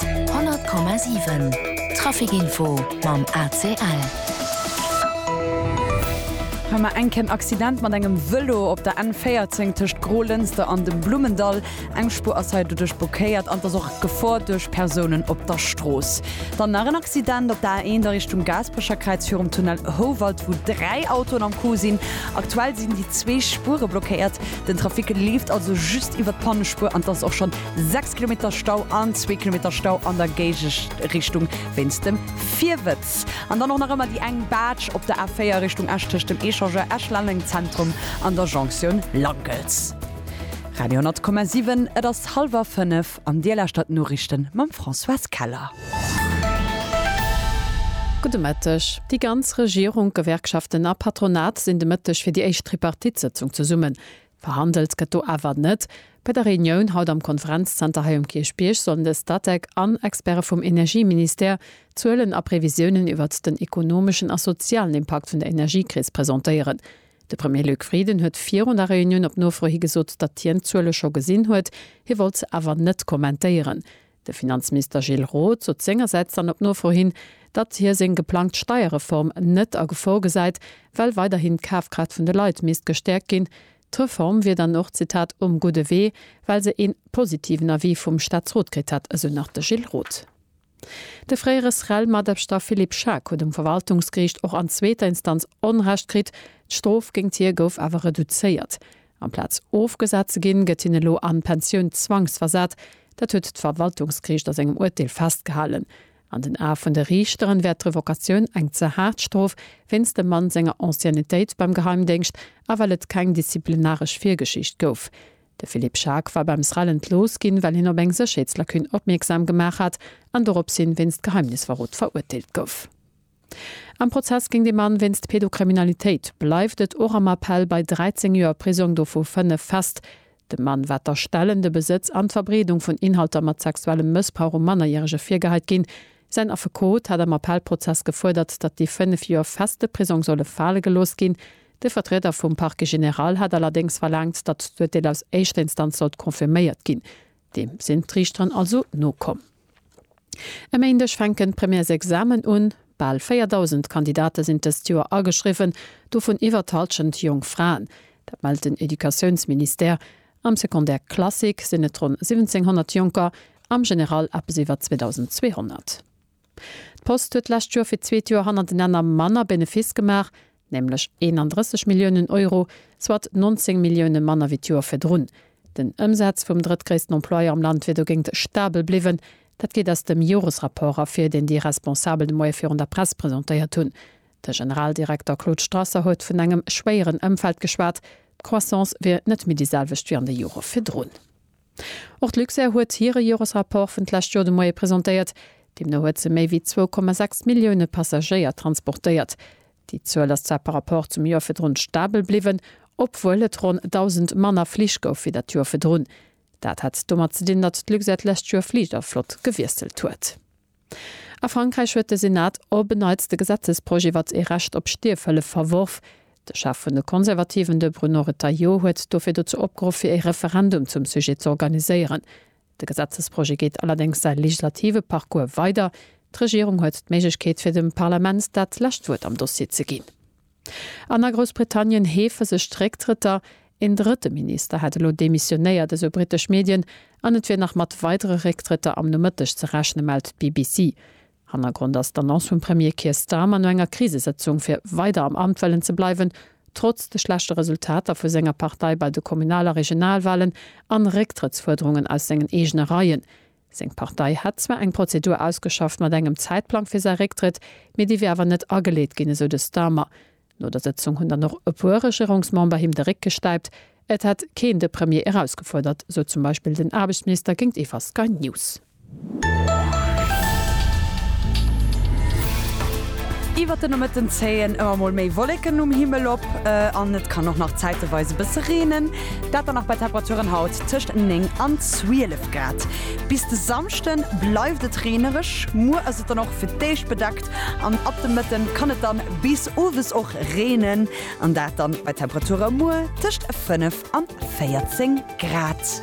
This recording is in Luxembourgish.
100,7 Trafic info mam ACL. Hëmmer enk en Accident mat engem Vëlo op der N14 tëscht Grolënster an dem Blummendall. Eng Spuer ass hei doduerch blockéiert an et ass och Gefor duerch Persounen op der Strooss. Dann nach en Accident op der A1 a Richtung Gaasperecherkräiz virum Tunnel Houwald, wou dräi Autoen am Coup sinn. Aktuell sinn déi zwee Spuere blockéiert. Den Trafic leeft also just iwwer d'Pannespuer an et ass och schonn 6 Kilometer Stau an zwee Kilometer Stau an der Géigeschrichtung wéinst dem Virwëtz. An dann och nach ëmmer déi eng Baatsch op der A4 Richtung Esch tëscht dem Echangeur Esch-Lenneng-Zentrum an der Jonktioun Langels. Radio 10,7, Et ass hallwer fënnef an Dir lauschtert d'Noriichten mam Françoise Keller. Gudde Mëtteg. Déi ganz Regierung, d'Gewerkschaften a Patronat sinn de Mëtteg fir déi éischt Tripartite-Sëtzung zesummen. Verhandelt gëtt do awer net. Bei der Reunioun haut am Konferenzzenter hei um Kierchbierg sollen de Statec an Experte vum Energieministère Zuelen a Previsiounen iwwert den ekonomeschen a sozialen Impakt vun der Energiekris presentéieren. De Premier Luc Frieden huet virun der Reunioun op Nofro hi gesot, datt hien d'Zuele scho gesinn huet, hie wollt se awer net kommentéieren. De Finanzminister Gilles Roth sot sengersäits dann op Nofro hin, datt hie seng geplangt Steierreform net a Gefor gesäit, well weiderhin d'Kafkraaft vun de Leit misst gestäerkt ginn. D'Reform wier dann och, Zitat, um gudde Wee, well se ee positiven Avis vum Staatsrot kritt hätt, esou nach de Gilles Roth. De fréiere SREL-Matabschter Philippe Schaack huet um Verwaltungsgeriicht och an zweeter Instanz Onrecht kritt, d'Strof géingt hie gouf awer reduzéiert. Amplaz ofgesat ze ginn, gëtt hien elo an d'Pensioun zwangsversat. Dat huet d'Verwaltungsgeriicht a sengem Urteel festgehalen. An den Ae vun de Riichteren wär d'Revokatioun eng ze haart Strof, wéinst dem Mann senger Anciennetéit beim Geheimdéngscht a well et keng disziplinaresch Virgeschicht gouf. De Philippe Schaack war beim SREL entlooss ginn, well hien op eng Sécherheetslacune opmierksam gemaach hat an dorops hin wéinst Geheimnisverrot verurteelt gouf. Am Prozess géint ee Mann wéinst Pedokriminalitéit bleift et och am Appell bei 13 Joer Prisong, dovu 5 fest. Dem Mann war d'Erstellen, de Besëtz an d'Verbreedung vun Inhalter mat sexuellem Mëssbrauch u Mannerjärege virgehait ginn. Säin Affekot hat am Appellprozess gefuerdert, datt déi 5 Joer feste Prisong solle fale gelooss ginn. De Vertrieder vum Parquet général hat allerdéngs verlaangt, datt d'Urteel aus éischter Instanz sollt confirméiert ginn. Deem sinn d'Riichterin also nokomm. E Méindeg fänken d'Premièresexamen un. Bal 4.000 Kandidate sinn dëst Joer ageschriwwen, dovun iwwer d'Hallschent jonk Fraen. Dat mellt den Educatiounsministère. Am Secondaire classique sinn et ronn 1.700 Jonker, am General eppes iwwer 2.200. D'Post huet d'lescht Joer fir d'zweet Joer hannertenenner manner Benefiss gemaach. nämlech 31 Milliounen Euro, soit 19 Millioune manner wéi d'Joer virdrun. Den Ëmsaz vum drëttgréissten Employeur am Land wier dogéint stabel bliwwen. Dat geet aus dem Joresrapport ervir, deen déi Responsabel de Moie virun der Press presentéiert hunn. De Generaldirekter Claude Strasser huet vun engem schwéieren Ëmfeld geschwat. D'Croissance wier net méi déi selwecht wéi an de Jore virdrun. Och d'Luxair huet hire Joresrapport vun d'lescht Joer de Moie presentéiert. Deemno huet se méi wéi zwou Komma sechs Millioune Passagéier transportéiert. Déi Zuel ass zwar par Rapport zum Joer virdrun stabel bliwwen, obwuel et ronn 1.000 manner Flich gouf wéi dat Joer virdrun. Dat hat domat ze dinn, datt d'Luxair d'lescht Joer Fligerflott gewiesselt huet. A Frankräich huet de Senat op en Neits de Gesetzesprojet iwwert ee Recht op Stierfhëllef verworf. De Chef vun de Konservativen, de Bruno Retailleau, huet dofir dozou opgeruff, fir ee Referendum zum Sujet z'organiséieren. De Gesetzesprojet geet allerdéngs säi legislative Parcours weider. D'Regierung huet d'Méiglechkeet, fir dem Parlament dat lescht Wuert am Dossier ze ginn. An a Groussbritannien heefe sech d'Récktrëtter. Een drëtte Minister hätt elo demissionéiert, esou britesch Medien. An et wier nach mat weidere Récktrëtter am Nomëtteg ze rechne, mellt d'BBC. Hannergrond ass d'Annonce vum Premier Keir Starmer no enger Krisesëtzung, fir weider am Amt wëllen ze bleiwen, trotz de schlechte Resultater vu senger Partei bei de Kommunal a Regionalwalen an Récktrëttsfuerderungen aus sengen eegene Reien. Seng Partei hätt zwar eng Prozedur ausgeschafft mat engem Zäitplang fir säi Récktrëtt, mee déi wier awer net ageleet ginn, esou de Starmer. No der Sëtzung hunn dann och e puer Regierungsmember him de Réck gestäipt. Et hätt keen de Premier erausgefuerdert, sot zum Beispill den Aarbechtsminister géintiwwer Sky News. Iwwert de Nomëtten zéien ëmmer mol méi Wolleken um Himmel op an et kann och nach zäiteweis e bësse reenen. Dat dann nach bei Temperaturen haut tëscht 9 an 12 Grad. Bis de Samschde bleift et reenereg, muer ass et dann och fir d'éischt bedeckt an ab de Mëtte kann et dann bis owes och reenen an dat dann bei Temperature muer tëscht 5 an 14 Grad.